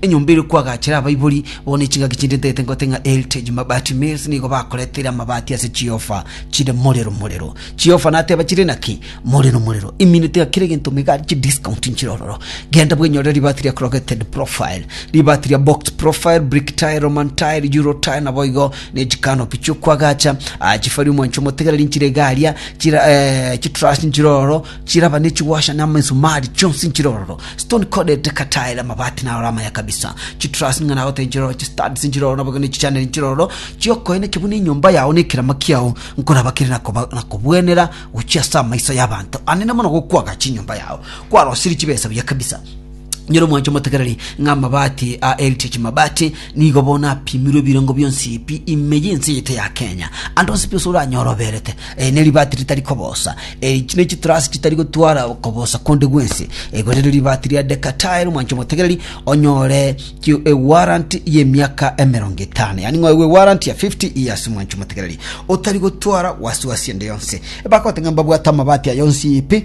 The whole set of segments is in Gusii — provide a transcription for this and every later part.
Enyomba ere kwagachera abaibori bo ne chingaki chinde ntete ngote ng'a Heritage Mabati Mills nigo bakoreteire amabati ase chiofa chire morero morero. Chiofa nateba chire naki? Morero morero. Imineti ng'a kera egento mega ari chidiscount nchire ororo. Genda bwenyore ribati ria Corrugated Profile, ribati ria Box Profile, Brick Tile, Roman Tile, Euro Tile naboigo ne chikanopi chiokwagacha, ah, chifari omwancho omotegereri nchire iga aria, chira, eh, chitruss nchire ororo, Chiraba ne chigwasha na amisumari chionsi nchirororo, stone corded tactile, amabati naroro amaya kabisa, chitruss ng'a nagoteba nchirororo, chistuds nchirororo naboigo ne chichaneri nchirororo, chiokoyena ekibu ne enyomba yao ne ekerama kiao nkoraba kere nakoba nakobwenera gochia ase amaiso y'abanto anene mono gokwaga chinyomba yao, kwarosirie chibesa buya kabisa. Nyoro mwanche motegereri ng'a amabati a Heritage Mabati nigo bono apimirwe ebirengo bionsi pi ime y'ense eye ete ya Kenya. Ande onsi pi ase oranyore oberete eh, ne ribati ritari kobosa eh, ne chitrasi chitari gotwara kobosa konde gwensi eh, gose ne ribati ria Decatile mwanche motegereri onyore ki- eh, warrant y'emiaka emerongo etano yani ng'a oigwe warrant ya 50 years mwanche motegereri otari gotwara wasiwasi ende yonsi bakotenga mbabwate amabati ayo onsi pi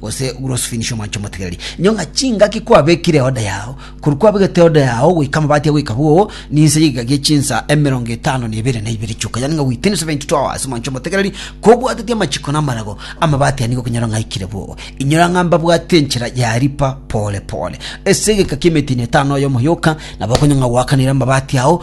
gose grossfinish omwancho omotegereri inyo ng'a chingaki kwabekire eoda yao korwa kwabegete eoda yao goika amabati agoika bwogo ninse y'egiga gie chinsa emerongo etano na ebere na ibere chioka yani ng'a within 72 hours omwancho omotegereri kobwateti amachiko na amarago amabati aya nigo okonyora ng'a aikire bwogo inyora ng'a mbabwate enchera ya ripa pole pole ase egeka ki'emetino etano oyomo yoka nabo okonywa ng'a gwakanire amabati ao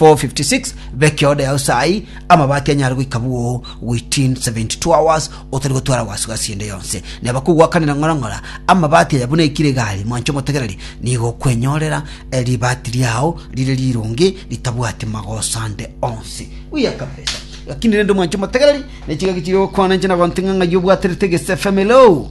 4:56 Bekia oda yao saai, amabati anyare goika bwoo within 72 hours otari gotwara wasi gasi ende yonse. Neba kogwakanera ng'ora ng'ora amabati aya buna ekire egari, mwanche omotegereri nigo okwenyorera eh, ribati riao rire rironge ritabwati magoso ande onsi. Buya kabisa. Lakini rende mwanche omotegereri, ne chigaki chire gokwana inche nagontinga ng'ai obwaterete egesefemelo.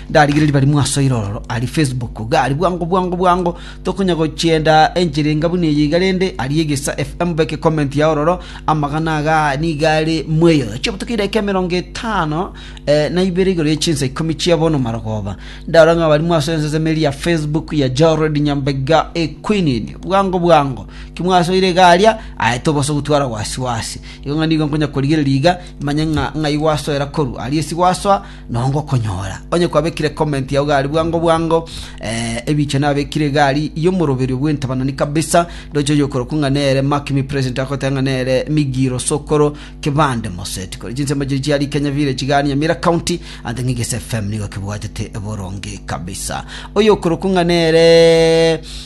Ndarigereria barimo aso iroro aria Facebook, iga aria bwango bwango bwango, tokonya gochienda enchera enga buna eye iga rende, aria egesa FM beke comment yao ororo, amagana agaa nigo are mweyo. Chiobotuko edaika emerongo etano eh, na ibere igoro ye chinsa ikomi chia bono marogoba. Ndarora ng'a barimo aso enseseme eria ya Facebook ya Jared Nyambega Equinini. Bwango bwango, kimwasoire iga aria, aye tobosa gotwara wasi wasi. Igo ng'a nigo nkonya korigereria iga, manye ng'a ng'ai gwasoera koru aria esi gwasoa, Nongo okonyora onye kwabekire comment yao gari bwango bwango, eh, ebiche nabekire gari y'omoroberio bw'entabanani kabisa, ndoche oyokorokwa ng'a nere Mark mi president agoteba ng'a nere Migiro Sokoro Kibande Moseti. Kore chinsemo chiria chia Rikenya Village igaa Nyamira County, ante ng'a Igese FM nigo kebwatete boronge kabisa. Oyokorokwa ng'a nere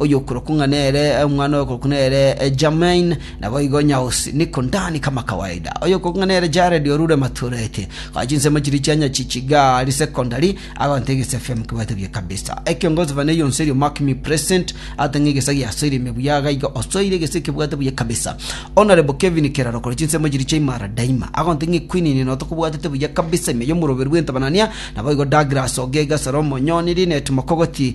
oyokorokwa ng'a nere omwana oyokorokwa nere Jamain, naboigo Nyaosi, Niko Ndani kama kawaida, oyokorokwa ng'a nere Jared orure Matureti, koa chinsemo chiria chia Nyachichigari Secondary, agonte egesa FM kebwate buya kabisa. Ekiongozi bane yonsi erio mark me present, ate ng'a egesa giasoire ime buya iga iga osoire egesa ekebwate buya kabisa. Honorable Kevin Keraro kore chinsemo chiria chia Imara Daima, agonte ng'a equinini noto kobwatete buya kabisa ime yomoroberu bw'entabanania, naboigo Douglas Ogega, Salomo Nyoni, Linet Mokogoti,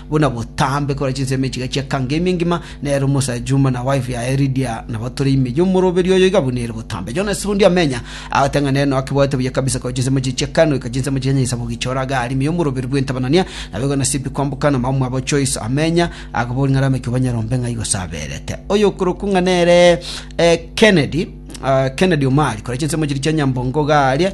buna botambe kore chinsemo echiga chi'ekango ime ngima, nere omosae Juma na wife yaye Lydia nabo tore ime y'omoroberi oyo iga buna ere botambe. Jonas Sirundi amenya, agoteba ng'a nere noa kebwate buya kabisa kore chinsemo echi chi'ekango ika chinsemo chia Nyaisabo gichora iga are ime y'omoroberi bw'entabanania, nabo igo Nasipi kwamboka na omomwabo Joyce amenya, akaboria ng'a rameke obanyarombe ng'ai gose aberete. Oyokorokwa ng'a nere Kennedy, Kennedy Omari, kore chinsemo chiria chia Nyambongo iga aria,